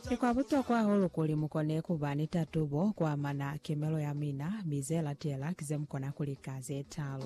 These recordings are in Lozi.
Ki kwa butokwa hahulu kuli mu kone ku ba ni tatubo ku amana kemelo ya mina, mi ze latela ki ze mu kona ku lika ze talu.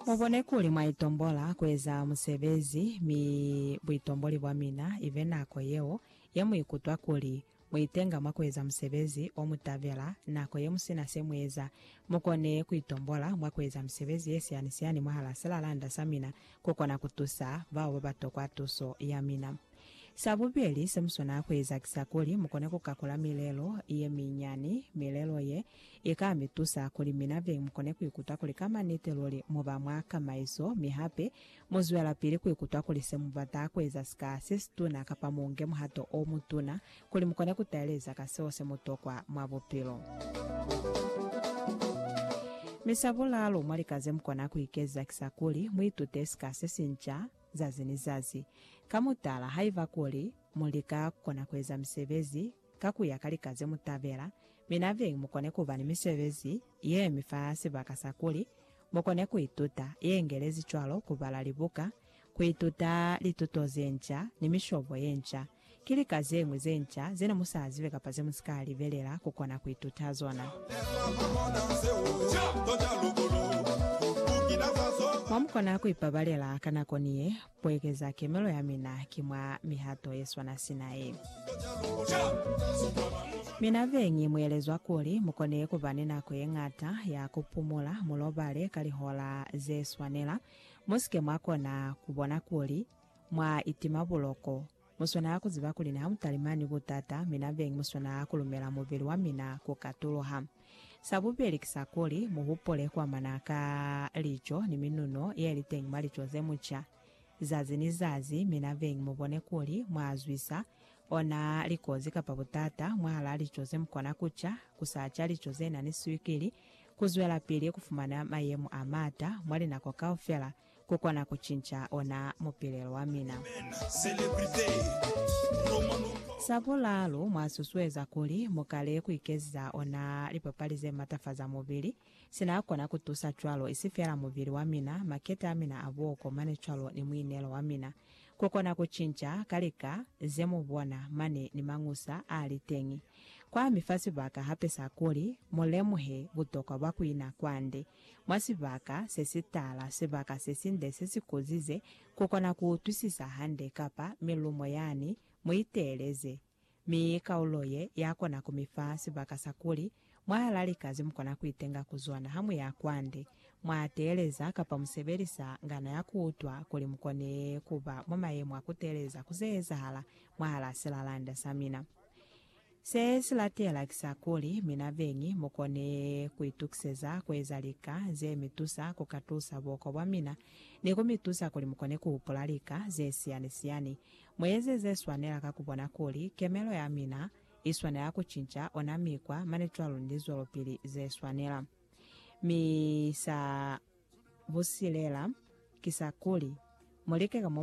Mu bone kuli mwa itombola ku eza musebezi, mi buitomboli bwa mina i be nako yeo ye mu ikutwa kuli mu itenga mwa ku eza musebezi o mu tabela. Nako ye mu si na se mu eza, mu kone ku itombola mwa ku eza misebezi ye siyani-siyani mwahal'a silalanda sa mina ku kona ku tusa bao ba ba tokwa tuso ya mina. Sa bubeli se mu swanela ku eza ki sa kuli mu kone ku kakula milelo ye minyani. Milelo ye, i ka mi tusa kuli mina beñi mu kone ku ikuta kuli ka maniti luli mu ba mwa kamaiso, mi hape mu zwelapili ku ikuta kuli se mu bata ku eza si ka se situna kapa mu nge muhato o mutuna kuli mu kone ku taeleza ka seo se mu tokwa mwa bupilo. Mi sa bulalu mwa lika ze mu kona ku ikeza ki sa kuli mu itute sika se sinca. zazi ni zazi. Ka mutala, haiba kuli mu lika kona kueza misebezi ka kuya ka lika ze mu tabela, mi nabeñi mukone kuba ni misebezi ye mi fa sibaka sa kuli mukone kuituta, ye ngelezi cwalo kubala libuka, kuituta lituto ze nca, ni mishobo ye nca. Ki lika zeñwi ze nca zene mu sa zibe kapa ze mu si ka libelela ku kona ku ituta zona? Mwa mu kona ku ipabalela ka nako ni ye, Ku ekeza kemelo ya mina ki mwa mihato ye swana sina ye. Mina beñi mu elezwa kuli mu kone ku ba ni nako ye ñata ya ku pumula, mu lobale ka lihola ze swanela. Mu si ke mwa kona ku bona kuli Mwa itima buloko. Mu swanela ku ziba kuli niha mu talimani butata, mi nabeñi mu swanela ku lumela mubili wa mina ku katuluha. Sa bubeli ki sa kuli, mu hupule ku amana ka lico ni minuno ye li teñi mwa lico ze mu ca zazi ni zazi, mi nabeñi mu bone kuli mwa zwisa ona likozi kapa butata mwahalaa lico ze mu kona ku ca, ku sa ca lico ze na ni swikili, ku zwelapili ku fumana mayemo a maata mwa linako kaufela ku kona ku cinca ona mupilelo wa mina. Sa bulaalu, mwa susueza kuli mu kale ku ikeziza ona lipapali ze matafaza mubili. Sina kona ku tusa cwalo, isi fela mubili wa mina, makete a mina a buoko mane cwalo ni muinelo wa mina. Ku kona ku cinca ka lika ze mu bona mane ni mañusa a li teñi. Kwa mi fa sibaka hape sa kuli mu lemuhe butokwa bwa ku ina kwande mwa sibaka se si tala, sibaka se sinde se si kozize ku kona ku utwisisa hande kapa milumo yani, mu iteeleze. Mi kaulo ye ya kona ku mi fa sibaka sa kuli mwahal'a lika ze mu kona ku itenga ku zona ha mu ya kwande, mwa teeleza kapa mu sebelisa ngana ya ku utwa kuli mu kone ku ba mwa mayemo a ku teeleza ku ze ezahala mwahal'a silalanda sa mina. Se si latela ki sa kuli, mi na beñi mu kone ku itukiseza ku eza lika ze mi tusa ku katusa buoko bwa mina ni ku mi tusa kuli mu kone ku hupula lika ze siyani-siyani. Mu eze ze swanela ka ku bona kuli kemelo ya mina i swanela ku cinca ona mikwa mane cwalo ni lizwelopili ze swanela. Mi sa busilela ki sa kuli, mu like ka mo mu kona ka teni.